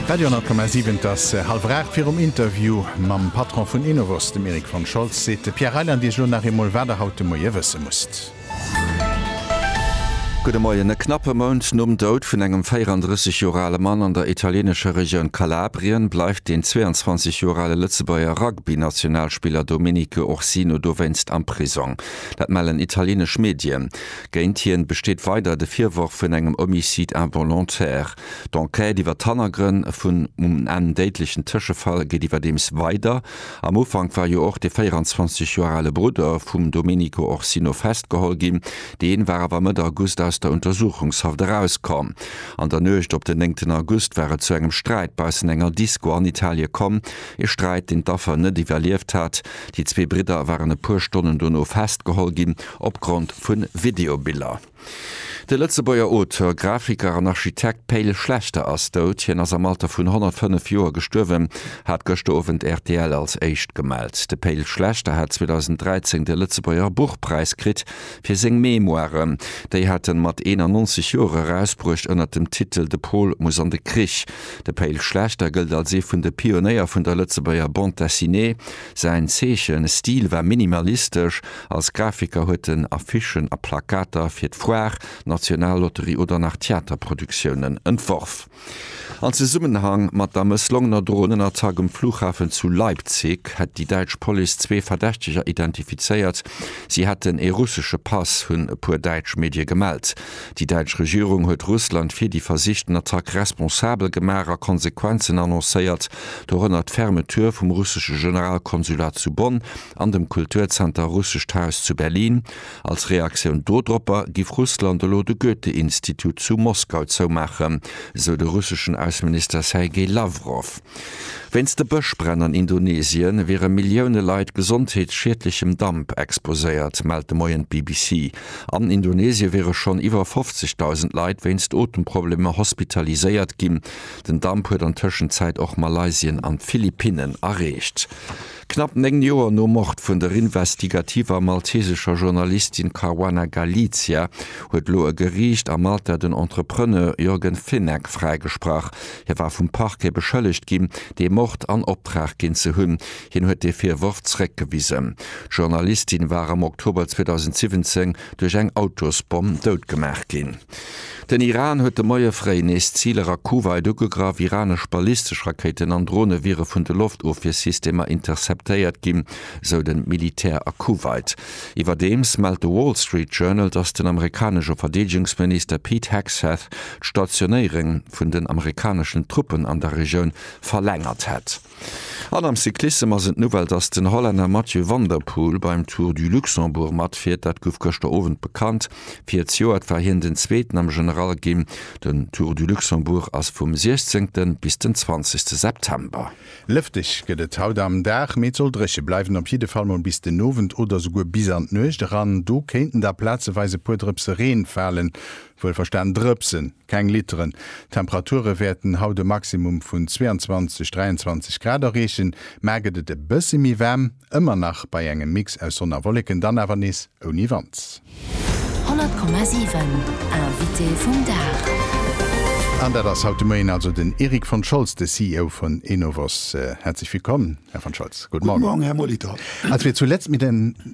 Radio 10,7 Et ass hallwer 8. Virum Interview mam Patron vun Enovos, dem Erik von Scholz, seet de Pierre Reyland Iech elo nach eemol, wat Der haut de Moie wësse musst. Gudde Moien. E knappe Mount nom Doud vun engem 34 Joer ale Mann an der italieenescher Regioun Kalabrien bleift den 22 Joer ale Lëtzebuerger Rugby-Nationalspiller Domenico Ursino dowéinst am Prisong. Dat mellen italieenesch Medien. Géint hien besteet weider de Virworf vun engem Homicide involontaire. D'Enquête iwwer d'Hannergrënn vun um Enn déidlechen Tëschefall geet iwwerdeems weider. Am Ufank war jo och de 24 Joer ale Brudder vum Domenico Orsino festgeholl ginn. Deen war awer Mëtt August aus der Untersuchungshaft erauskomm. An der Nuecht op den néngten August war et zu engem Sträit baussen enger Disco an Italie komm. E Sträit, deen d'Affer net iwwerlieft hat. Déi zwee Bridder waren e puer Stonnen dono festgeholl ginn. Opgrond vu Videobiller. De Lëtzebuerger Auteur, Grafiker an Architekt Pe'l Schlechter ass dout. Hien ass am Alter vun 105 Joer gestuerwen, hat gëschter Owend rtl als éischt gemellt. De Pe'l Schlechter hat 2013 de Lëtzebuerger Buchpräis kritt fir seng Memoiren. Déi hat en mat 91 Joer erausbruecht ënner dem Titel De Pol muss an de Krich. De Pe'l Schlechter gëllt als ee vun de Pionéier vun der Lëtzebuerger Bande Dessinée. Säin Zeechen, Stil war minimalistesch. Als Grafiker huet en Affichen a Plakater fir d'Foire, d'Nationallotterie oder nach Theaterproduktiounen entworf. An Zesummenhang mat der mësslongener Dronenattack um Flughafen zu Leipzig hätt déi däitsch Police zwee Verdächteger identifizéiert. Si hätten ee russesche Pass, hunn e puer däitsch Medie gemellt. Déi däitsch Regierung huet Russland fir déi versichten Attack responsabel gemaach a Konsequenzen annoncéiert, dorënner d'Fermeture vum russesche Generalkonsulat zu Bonn an dem Kulturzenter Russescht Haus zu Berlin. Als Reaktioun dodropper giff Russland elo de Goethe-Institut zu Moskau zoumaachen, esou de russeschen Ausseminister Sergei Lawrow. Wéinst de Bëschbränn an Indonesien wiere Millioune Leit gesondheetsschiedlechem Damp exposéiert, mellt de Moien d'BBC. An Indonesie wiere schonn iwwer 50.000 Leit wéinst Otemproblemer hospitaliséiert ginn. Den Damp huet an Tëschenzäit och Malaysien an d'Philippinnen erreecht. Knapp néng Joer nom Mord vun der investigativer maltesescher Journalistin Caruana Galizia huet elo e Geriicht a Malta den Entrepreneur Yorgen Fenech fräigesprach. Hie war vum Parquet beschëllegt ginn, dee Mord an Optrag ginn ze hunn. Hien huet dee Virworf zeréckgewisen. D'Journalistin war am Oktober 2017 duerch eng Autosbomm doutgemaach ginn. Den Iran huet de Moie fréi nees Ziler a Kuwait ugegraff. Iranesch ballistesch Rakéiten an Drone wiere vun de Loftofwiersystemer interceptéiert ginn, esou de Militär a Kuwait. Iwwerdeems mellt de Wall Street Journal, datt den amerikanesche Verdeedegungsminister Pete Hegseth d'Stationéierung vun den amerikaneschen Truppen an der Regioun verlängert hätt. An am Cyclissem ass et d'Nouvelle, dass den Hollänner Mathieu van der Poel beim Tour du Luxembourg matfiert. Dat gouf gëschter Owend bekannt. Fir d'Joert war hien den Zweeten am General ginn. Den Tour du Luxembourg ass vum 16. bis den 20. September. Lëfteg gëtt et haut am Dag, mee et soll dréche bleiwen, op jidde Fall mol bis den Owend oder souguer bis an d'Nuecht eran. Do kéinten da plazeweis e puer Drëpse Reen falen. Wuelverstan Drëpsen, keng Litteren. D'Temperature wäerten haut e Maximum vun 22, 23 Grad erreechen, mar gëtt et e bësse méi waarm, ëmmer nach bei engem Mix aus Sonn a Wolleken, dann awer nees ouni Wand. 100,7 Invité vum Dag. An dat ass haut de Moien also den Eric von Scholz, de CEO vun Enovos. Häerzlech Willkomm, Här von Scholz. Gudde Morgen. Gudde Morgen, Här Molitor. Als wir zuletzt mit den.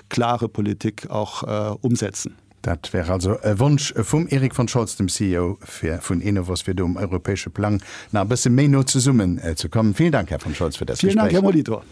klare Politik och umsetzen. Dat wär also e Wonsch vum Erik von Scholz, dem CEO vun Enovos, fir do um europäesche Plang nach e bësse méi no zesummen ze kommen. Villen Dank, Här von Scholz, fir dëst Gespréich. Villen Dank, Här Molitor.